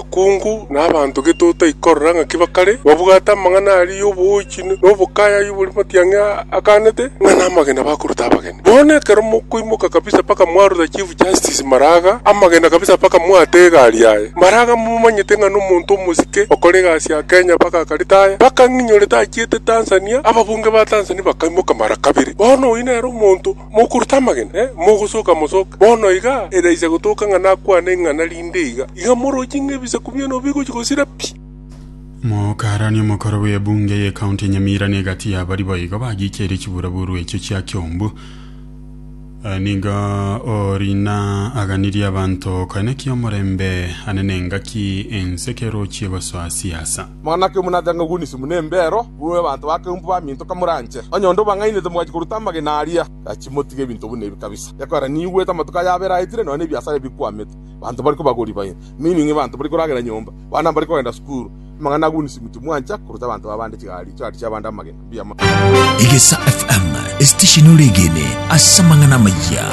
Abakungu na abanto getotai korora ng'aki bakare babwate amang'ana aria y'oboochi na obokayayia bori matiang'e aganete, ng'a namagena bakoruta abageni. Bono ekero mokoimoka kabisa mpaka mwaruta Chief Justice Maraga amagena kabisa mpaka mwate egari yaye. Maraga momanyete ng'a nomonto omosike okore egasi ya Kenya mpaka akaretaya. Mpaka ng'inyorete achiete Tanzania, ababunge ba Tanzania bakaimoka mara kabere. Bono oyio nere omonto Mokorota amagena, mogosoka mosoke. Bono iga eraiche gotoka ng'a nakwane ing'ana rinde iga, iga morochie ng'a ebisaku biano bigochia gosira pi. Mokarani omokoro bw'ebunge y'ecounty ya Nyamira na egati y'abaria boigo bagicheire chiburaburu echio chia Kiombu. Nigo Orina aganirie abanto koenekia omorembe ane nengaki ense kerochie gosoa siasa. Mana ki omonancha ng'a oguniswe buna embeero, buna abanto bakeumbu baminto kamoranche? Onye onde obang'ainete mogachi koruta amagena aria, gachia motige ebinto buna ebi kabisa. Ekorera niigwete amatuko ayabo eraetire, nonya nebiasara ebikwamete, abanto mbari kobagori baye, meaning abanto mbari koragera nyomba, abana mbari kogenda sukuru. Amang'ana aguniswe mochie mwancha koruta abanto babande chigari, chigarisha abande amagena. Mbuya mono. Egesa FM, esitesheni oregene ase amang'ana amaya.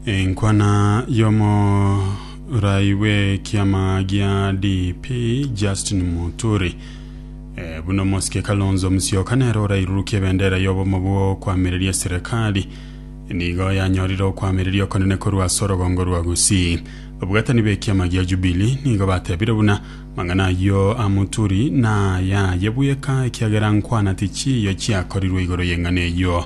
Enkwana y'omo Raii bw'ekiama gia DP Justin Muturi eh, buna omosike Kalonzo Musyoka nere orairurukia ebendera y'obomo bw'okwamireria eserekari nigo yanyorire okwamireria okonene korwa ase orogongo rwa Gusii. Obogatani b'ekiama gia Jubilee nigo batebire buna mang'ana ayio a Muturi nayaye bweka ekiagera nkwana tichiiyo chiakorirwe igoro y'eng'ana eyio.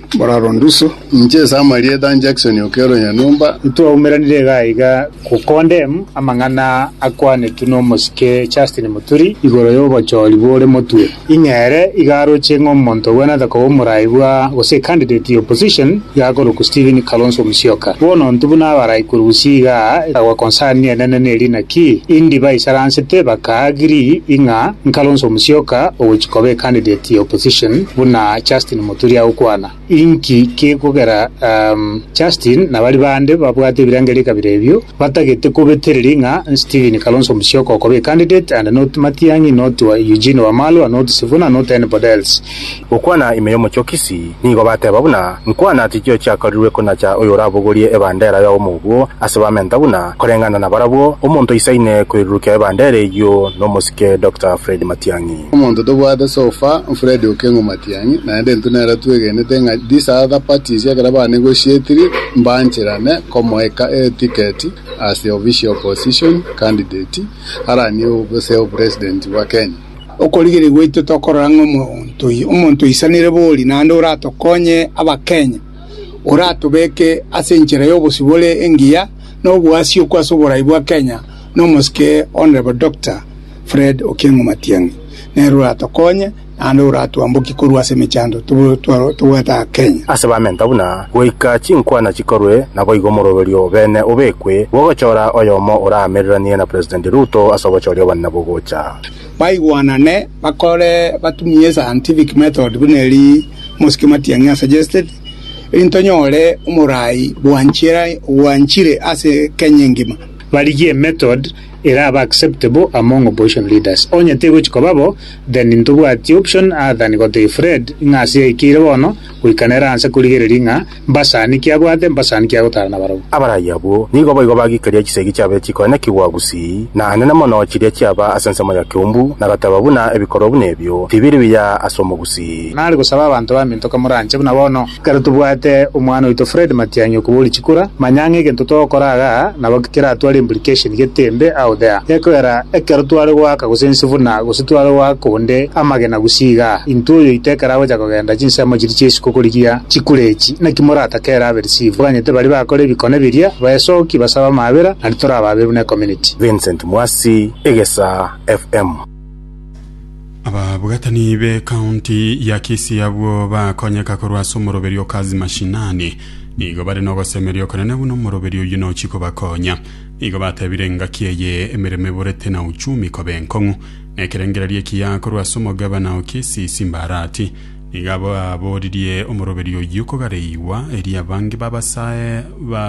Moraro ndusu. Inche Samaria Ethan Jackson o Kero Nyanyomba. Ntwaumeranire iga iga go condemn amang'ana akwanetwe nomosike Justin Muturi igoro yobochori bore motwe. Ing'e ere iga aroche ng'a omonto obwenerete koba omorai bwa gose ecandidate ya opposition iga akorokwa Stephen Kalonzo Musyoka. Bono ontwe buna abarai korusia iga akagwa concern enene neri naki indi baisaransete baka agree ing'a nKalonzo Musyoka ogochia koba ecandidate ya opposition buna Justin turi agwo kwana. Inki kegokera Justin na baria bande babwate ebirengerio ekabira ebio batagete kobetereria ng'a Stephen Kalonzo Musyoka okoba a candidate and not Matiang'i not Eugene Wamalwa not Sifuna not anybody else. Gokwana ime y'omochie o Kisii, nigo bateba buna nkwana tichio chiakorirwe konacha oyorabogorie ebandera y'obomo obwo ase bamenta buna koreng'ana na barabwo omonto aisaine koirurukia ebandera eyio nomosike Doctor Fred Matiang'i. Omonto tobwate so far Fred Okengo Matiang'i. Tiang'i, naende intwe nere twegenete ng'a disadapatisi ekero baane goshietiri mbancherane komoeka etiketi as the official opposition candidate aranie oboseo president bwa Kenya. Okorigereria gwaito tokorora ng'a omonto omonto oisanire bori naende oratokonye abakenya, oratobeke ase enchera y'obosio bore engiya na oboasiokwa ase oborai bwa Kenya nomosike Hon Doctor Fred Okieng'o Matiang'i nere oratokonye. naende oratwambokie korwa ase emechando tobwate aa Kenya. Ase bamenta buna goika chinkwana chikorwe, naboigo omoroberio o beene obekwe, bw'ogochora oyomo oraamereranie na President Ruto ase obochori obonene bogocha. Baigwanane bakore batumie scientific method buna eri Mosiki Matiang'i a suggested, erinde tonyore omorai bwanchire ase Kenya engima. Barigie method erabe acceptable among opposition leaders. Onye tegochi koba bo, then ntobwati option other than gotebia Fred ng'a ase yaikeire bono goika nere anse korigereria ng'a mbasani ki abwate, mbasani ki agotara nabarabwo. Abarai abwo nigo boigo bagiikeria chisegi chiabeire chikoenekigwa gusii, na enene mono chiria chiaba ase ensemo ya keumbu, na goteba buna ebikorwa buna ebio tibiri biya ase omogusii. Nare gosaba abanto baminto komoranche buna bono. Ekero tobwate omwana oito Fred Matiang'i okoba ore chikura, manya ang'e egento togokora iga nabo keratware implication getembe out there. Gekoera ekero tware goaka gose ense buna gose tware goaka onde amagena gusii iga, intwe oyoito ekero agocha kogenda chinsemo chiria chia isiko korigia chikura echi, naki moratake ere abe receive? Twaganyete baria bakora ebikone biria, baesoki, basabe amaabera, naende torababe buna ecommunity. Vincent Mwasi, Egesaa FM. Ababwatani b'ecounty ya Kisii abwo bakonyeka korwa ase omoroberi o Kazi Mashinani nigo bare nogosemeria okonene buna omoroberi oyio nochi kobakonya. Nigo batebire engaki eye emeremo eborete na uchumi koba enkong'u. Nekerengererio ekiya korwa ase omogabana o Kisii Simbarati nigo aboririe omoroberi oyio kogareigwa erio abange babasae ba